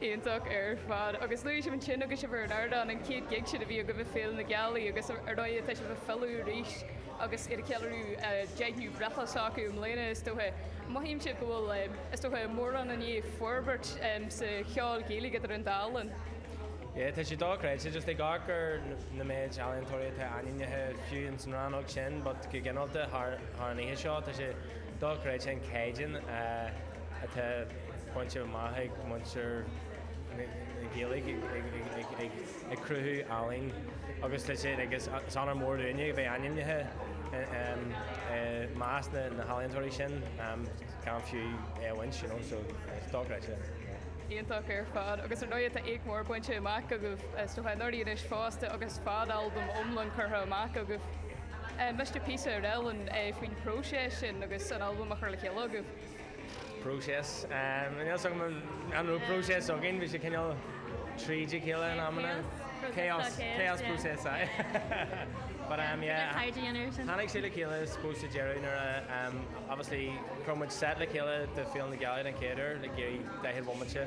iontach ar fad agus luaigh sibh ansin agus sibh ar an ardán an chéad gig sin a bhí agaibh ag Féile na Gealaí agus ar ndóigh tá sibh ag filleadh arís agus iad ag ceiliúradh deichiú breithlá s'acu i mbliana is dócha. Mothaímse go bhfuil, is dócha, mórán i ndiaidh forbairt sa cheol Gaeilge idir an dá linn. Yeah tá sé dochreidte just ag amharc ar na méid ealaíontóirí atá ainmnithe fiú ins an rannóg sin but go gineálta thar an oíche seo tá sé dochreidte an caighdeán a atá bainte amach ag muintir na Gaeilge ag cruthú ealaín agus is onóir mór dúinne a bheith ainmnithe i measc na healaíontóirí sin gan fiú é a bhaint, so is dochreidte. Iontach ar fad agus ar ndóigh tá éacht mór bainte amach agaibh sna hUimhreacha anois fosta agus fad-albam iomlán curtha amach agaibh. Inis píosa beag dúinn faoin phróiseas sin agus an albam a chur le chéile agaibh? próiseas. Níl fhios agam an raibh próiseas againn, bhí sé cineál tríd a chéile in amanna. Chaos. Chaos process, aye. But umm yeah. Tháinig sé le chéile i suppose sa deireadh nuair a umm obviously rinn muid set le chéile do Féile na Gealaí den chéad uair le Gerry Daichead Bhomaite.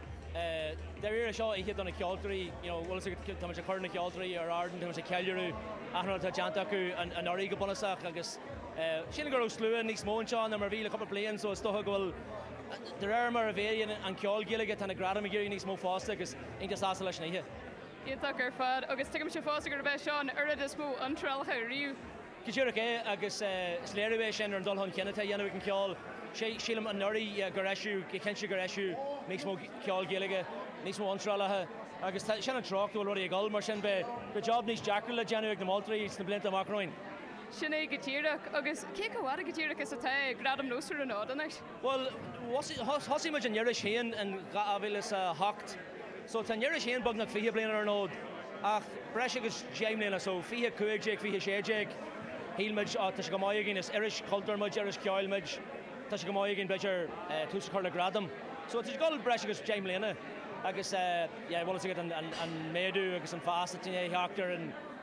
Dáiríre, seo oíche do na ceoltóirí, you know, bhfuil fhios agat, tá muid ag cur na ceoltóirí ar ardán, tá muid ag ceiliúradh achan rud atá déanta acu anuraidh go bunúsach agus sílim go raibh slua níos mó anseo ná mar a bhí le cúpla bliain so is dócha go bhfuil, de réir mar a mhéadaíonn an ceol Gaeilge, tá na gradaim ag éirí níos mó fosta agus iontach sásta leis an oíche. Iontach ar fad agus tuigimse fosta gurb é seo an oiread is mó iontrálacha riamh. Go díreach é, agus is léiriú é sin ar an dul chun cinn atá a dhéanamh ag an cheol. Sílim anuraidh gur eisíodh, go cinnte gur eisíodh níos mó ceol Gaeilge, níos mó iontrálacha, agus sin an treocht go bhfuil rudaí ag dul, mar sin beidh job níos deacra le déanamh ag na moltóirí sna blianta amach romhainn. Sin é go díreach, agus cé chomh fada go díreach is atá Gradaim Nós ar an fhód anois? Bhuel, thosaigh muid an iris féin in 2008 so tá an iris féin beagnach fiche bliain ar an fhód ach breis agus deich mbliana so fiche a cúig déag, fiche a sé déag shíl muid á tá sé chomh maith againn, is iris chultúir muid, iris cheoil muid, tá sé chomh maith againn b'fhéidir tús a chur le gradam. So tá sé ag dul breis agus deich mbliana agus yeah bhfuil fhios agat an méadú agus an fás atá i ndiaidh a theacht ar an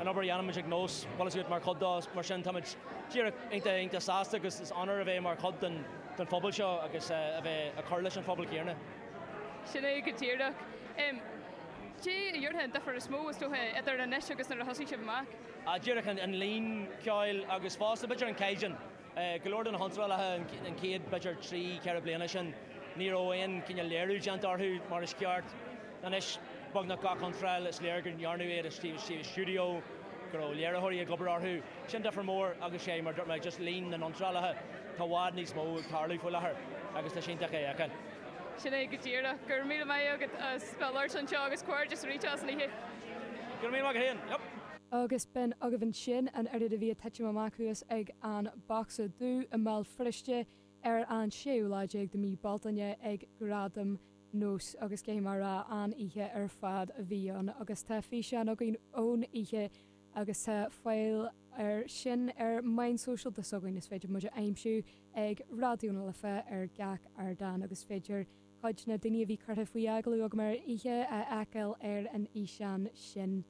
an obair a dhéanaimid ag Nós, bhfuil a fhios agat, mar chuid dó. Mar sin táimid díreach iontach iontach sásta agus is onóir a bheith mar chuid den den phobal seo agus a a bheith ag cur leis an phobal céanna. Sin é go díreach. Cad é a déarfá an difear is mó, is dócha, idir anois agus nuair a thosaigh sibh amach? Díreach an an líon ceoil agus fosta b'fhéidir an caighdeán. go leor de na hiontrálacha an chéad, b'fhéidir, trí, ceithre bliana sin, ní raibh aon chineál léiriú déanta orthu mar is ceart. Anois, beagnach gach iontráil, is léir go ndearnadh iad i suíomh stiúideo, go raibh léiritheoirí ag obair orthu. Sin difear mór agus is é, mar a dúirt mé, just líon na n-iontrálacha, tá i bhfad níos mó ag tarlú faoi láthair agus tá sé iontach é a fheiceáil. Sin é go díreach. Go raibh míle maith agat as bheith ag labhairt anseo agus comhghairdeas arís as an oíche. Go raibh míle maith agat féin. Agus b'in agaibh ansin an oiread a bhí ag titim amach thuas ag an bocsa dubh i mBéal Feirste ar an séú lá déag de mí Bealtaine ag Gradaim Nós agus caithfidh mé a rá an-oíche ar fad a bhí ann agus tá físeán againn ón oíche agus tá fáil air sin ar meáin sóisialta s'againn is féidir muid a aimsiú ag Raidió na Life ar gach ardán agus féidir cuid de na daoine a bhí curtha faoi agallamh agam ar an oíche a fheiceáil ar an fhíseán sin.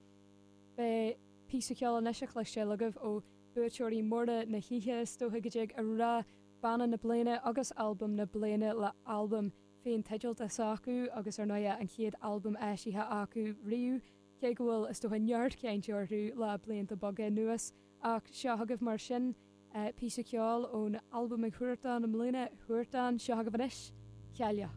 Beidh píosa ceoil anois á chloisteáil agaibh ó bhuaiteoirí móra na hoíche, is dócha go dtig a rá, Banna na Bliana agus Albam na Bliana le halbam féinteidealta s'acu agus ar ndóighe an chéad albam eisithe acu riamh, cé go bhfuil, is dócha, neart cainte orthu le blianta beaga anuas. Ach seo agaibh mar sin píosa ceoil ón albam ag Huartan i mbliana, Huartan, seo agaibh anois, Cailleach.